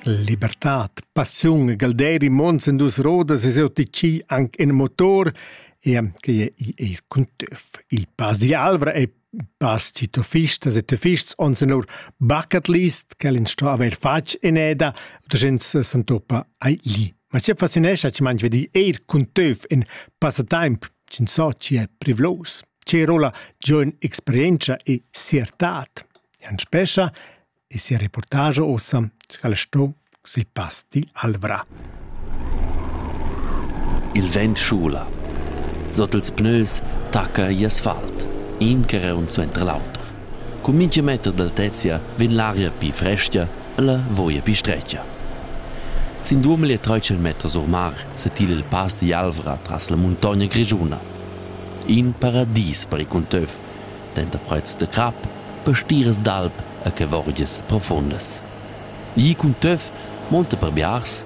Libertad, passiun e galderi mons en dus rodas es eu ticì anc in motor e che i eir cun töf. Il Pass d'Alvra e Pass Citofistas e Töfists ons en our bucket list ch'el in sto avair fatg in eda da gens s'antopa ai li. Ma sia fascinescha chi mangia di eir cun töf in passatemp Ch'insatgi è privlos, che rola giun experientscha e siertad. Jan Spescha e sia reportage ossa scal sto se pasti Alvra. Il vent schula. Sot ils pneus tacca i asfalt, in che reun suenter l'auter. Cun mintga meter d'altezia vegn l'aria pli frestga e la voia pli stretga. Sin duamilli e tratg meters or mar setila il pass digl Alvra tras la muntogna grischuna. In paradis per il cunteuff, denter prets de crap, pastiras d'alp e chevorgias profundas. Igl cunteuff monta per biars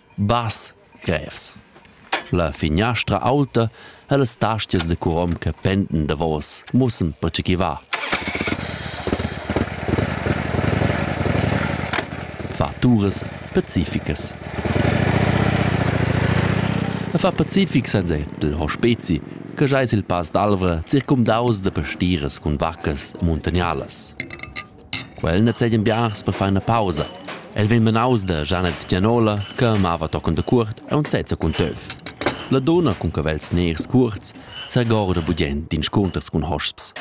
Bass, grevs. La finiastra aulta e las tastias da curom che pendan davos mussan pertge ch'i va. Fa turas pacificas. E fa pacific senza il hospezi che jais il Pass d'Alvra circumdaus da pastiras cun vaccas muntanialas. Quel nezegian biars per far ina pausa. El vegn menaus da Janet Gianola che amava tochen dacuort aunc sezza cun töf. La dunna cun cavels ners cuorts segorda bugient d'inscunters cun hosps.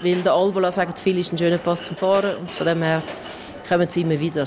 Weil der Albola sagt, viele ist ein schöner Post zum Fahren und von dem her kommen sie immer wieder.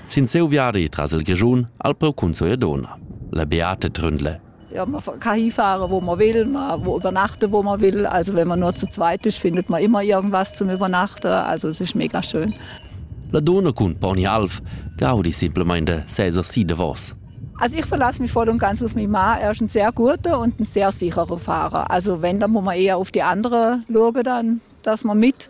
sin seu viadi tras il Grischun al preu cunzo e dona. La Beate Tründle. Ja, man kann hinfahren, wo man will, man übernachten, wo man will. Also wenn man nur zu zweit ist, findet man immer irgendwas zum Übernachten. Also es ist mega schön. La donna cun poni alv gaudi simplemente Cäsar si davos. Also ich verlasse mich voll und ganz auf meinen Mann. Er ist ein sehr guter und ein sehr sicherer Fahrer. Also wenn, dann muss man eher auf die andere schauen, dann, dass man mit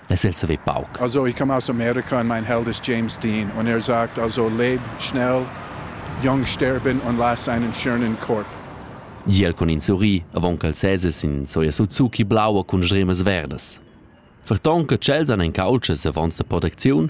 less el saver pauc. Also, ich komme aus Amerika und mein Held ist James Dean und er sagt also, leb schnell, jung sterben und lass einen schönen Korb. Giel con in sorri, avon ch'el seses in soia Suzuki blaua cun sremas verdas. Ferton che tschels han en caultschas avons da protecziun,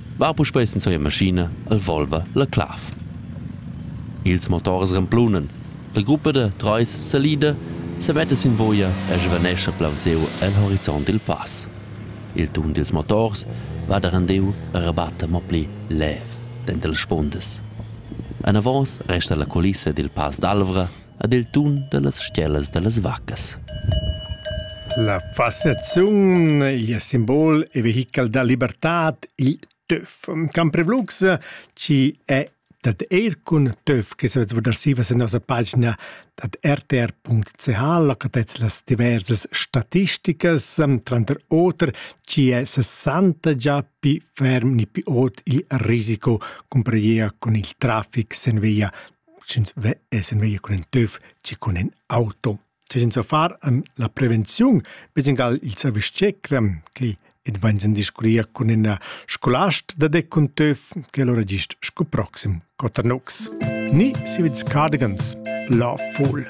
va puspei senza ina maschina el Volva la clav. Ils motors remplunan. La gruppa da treis salida semetta sin voglia e svanescha plaunsiu el horizont dil pass. Il tun dils motors va da rendiu e rebatta mo pli lev denter las spundas. Anavos resta la culissa dil Pass d'Alvra ad il tun da las stgellas da las vaccas. La fassaziun, il simbol e vehichel da libertad, il töf. Camprevlux ci è dat er cun töf che savet vardar sivas en nossa pagina dat rtr.ch locatez las diversas statisticas tranter oter ci è 60 già pi ferm ni pi ot il risico cumpariea con il traffic sen via sch'ins ve es in vegnir cun in töf chi cun in auto. Cioè senza far ehm, la prevenziun, be singal il service tschecrem che advegns in discurria cun ina scolast da dec cun töf che allora gist sco proxim Cotternox. Ni si vits cardigans, la fool.